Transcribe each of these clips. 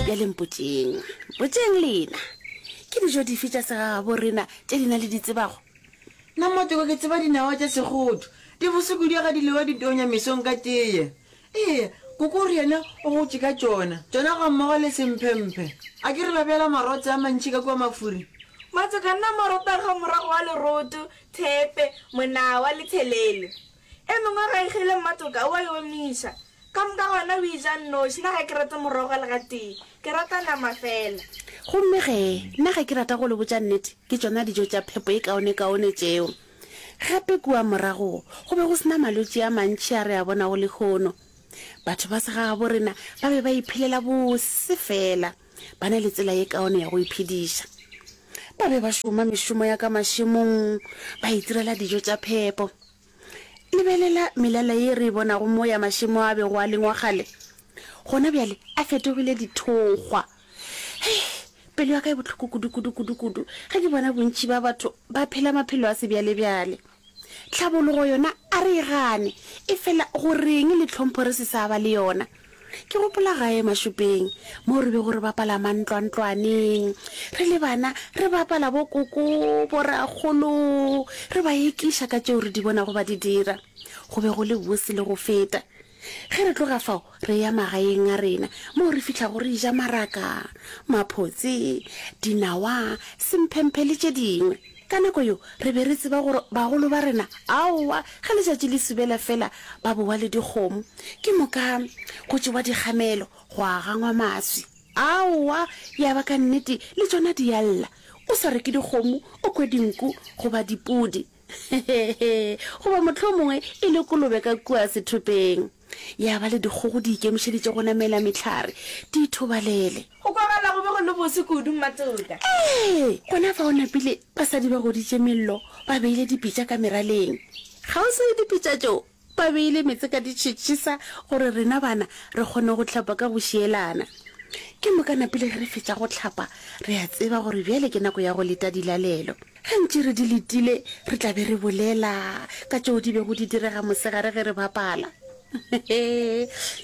bjale mpotšeng mpotšeng lena ke dijo dife tša segagabo rena tše lena le di tsebago na motoko ke tseba dinawa tša segodu di boseku di ga di lewa di tonya mesong ka teye ee koko o re yena o gotše ka tšona tšona ga mmogo le semphemphe a ke re ba bjala marotse a mantšhi ka kua mafuri matsoka nna moroto ga morago wa leroto thepe monawa le tshelelo E mengwe ga e gele mmatoka, o a e omiša. Ka moka gona o e ja nnoši. Nna ga ke rate morogo le gatee. Ke rata nama feela. Gomme ge, nna ge ke rata go le botša nnete, ke tšona dijo tša phepo e kaonekaone tšeo. Gape kua morago go be go se na malwetši a mantši a re a bonago lehono. Batho ba segagabo rena ba be ba iphelela bose feela. Ba na le tsela ye kaone ya go iphediša. Ba be ba šoma mešomo ya ka mašemong, ba itirela dijo tša phepo. Lebelela melala ye re e bonago mo ya mašemo a bego a lengwa kgale. Gona bjale a fetogile dithokgwa. Hei! Pelo ya ka e bohloko kudu-kudu-kudu-kudu ge ke bona bontši ba batho ba phela maphelo a sebjalebjale. Tlhabologo yona a re e gane, e fela go reng le tlhompho re se sa ba le yona? Ke gopola gae Mashupeng mo re bego re bapala mantlwantlwaneng re le bana, re bapala bo koko, bo rakgolo, re ba ekiša ka tšeo re di bonago ba di dira. Go be go le bose le go feta. Ge re tloga fao re ya magaeng a rena moo re fihlago re ja maraka, maphotse, dinawa, semphemphe le tše dingwe. Ka nako yeo re be re tseba gore bagolo ba rena aowa ge letšatši le subela fela ba bowa le dikgomo, ke moka go tšewa dikgamelo gwa gangwa maswi. Aowa ya ba ka nnete le tšona di a lla, o sa reke dikgomo o kwe dinku goba dipudi. Hehehe, goba mohlomongwe e le kolobe ka kua sethopeng. Ya ba le dikgogo di ikemišeditše go namela mehlare, di ithobalele. Go kwagala go be go le bose kudu, Mmatoka. Ee, gona fa o napile, basadi ba goditše mello, ba beile dipitša ka meraleng. Kgauswi le dipitša tšeo, Ba beile meetse ka ditšhitšhisa gore rena bana re kgone go hlapa ka go šielana. Ke moka na pele ge re fetša go hlapa re a tseba gore bjale ke nako ya go leta dilalelo. Ge ntše re di letile re tla be re bolela ka tšeo di bego di direga mosegare ge re bapala.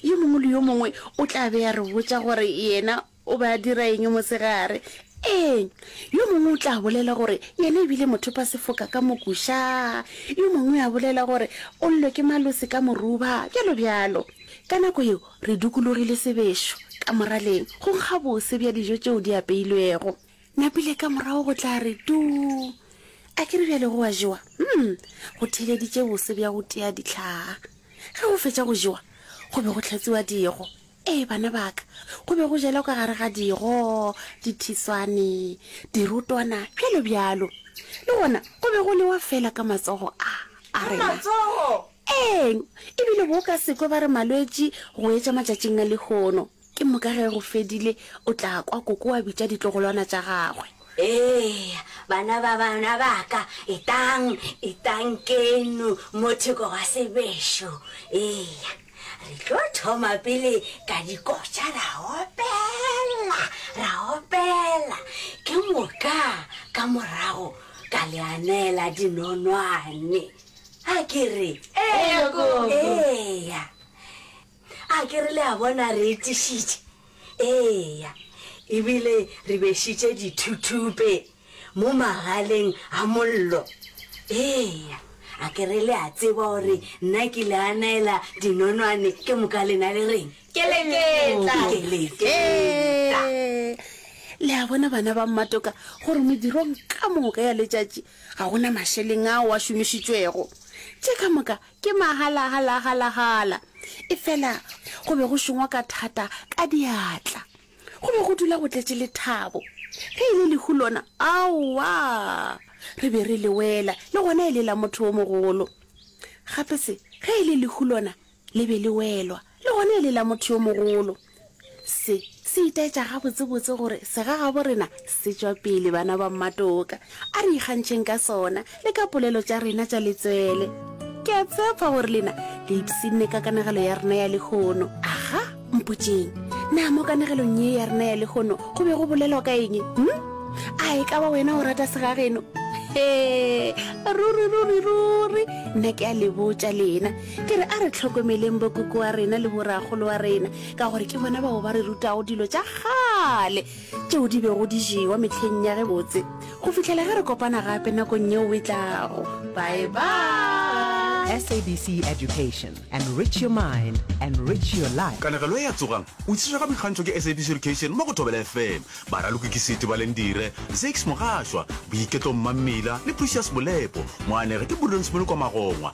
Yo mongwe le yo mongwe o tla be a re botša gore yena O be a dira eng mosegare? Ee, yo mongwe o tla bolela gore yena e bile mothopasefoka ka mokuša, yo mongwe a bolela gore o llelwe ke malosi ka moruba, bjalo bjalo. Ka nako yeo re dukulogile sebešo ka moraleng go nkga bose bja dijo tšeo di apeilwego. Napile ka morago go tla re tuu. A ke re bjale go a jewa? Umm, go theeleditše bose bja go tia dihlaa. Ge go fetša go jewa, go be go hlatswiwa digo. Ee, bana ba ka, go be go jela ka gare ga digo, dithiswane, dirotwana, bjalo bjalo. Le gona go be go lewa fela ka matsogo a a rena. Matsogo! Eng? Ebile bo ka sekwe ba re malwetši go etša matšatšing a lehono. Ke moka ge go fedile o tla kwa koko a bitša ditlogolwana tša gagwe. Eya, bana ba bana ba ka, etlang, etlang keno mo theko ga sebešo. Eya. Re tlo thoma pele ka dikotša ra opela, ra opela, ke moka ka morago ka le anela dinonwane. A ke re? Eya, Koko. Eya. A ke re le a bona re etišitše? Eya. Ebile re bešitše dithuthupe. Mo magaleng a mollo. Eya, a ke re le a tseba gore nna ke le a naela dinonwane ke moka lena le reng? Ke leketla. Ke leketla. Le a bona bana ba mmatoka gore modirong ka moka ya letšatši ga gona mašeleng ao a šomišitšwego. Tše ka moka ke mahalahalahalagala. Efela go be go šongwa ka thata ka diatla. Go be go dula go tletše lethabo. Ge e le lehu lona, aowa! Re be re le wela, le gona e le la motho o mogolo. Gape se, ge e le lehu lona, le be le welwa, le gona e le la motho yo mogolo. Se, se itaetša gabotsebotse gore segagabo rena se tšwa pele, bana ba mmatoka. A re ikgantšheng ka sona, le ka polelo tša rena tša letswele. Ke a tshepa gore lena le ipsinne ka kanegelo ya rena ya lehono. Aga, mpotšeng, na mo kanegelong ye ya rena ya lehono go be go bolelwa ka eng? Hm? A e ka ba wena o rata segageno? He, ruri, ruri, ruri, nna ke a le botša lena. Ke re a re tlhokomeleng bokoko wa rena le boragolo wa rena, ka gore ke bona bao ba re rutago dilo tša kgale. tšeo di bego di jewa mehleng ya ge botse go fihlela ge re kopana gape nakong yeo e tlago bye bye sabc education enrich your mind enrich your life Kanegelo e a tsogang o tšiswa ka boikgantšho ke SABC Education mo go Thobela FM. Baraloki ke Siti Balendire, Zakes Mogashwa, Boiketlo Mmammila le Precious Molepo. Moanegi ke Burdens Molokwa Magongwa.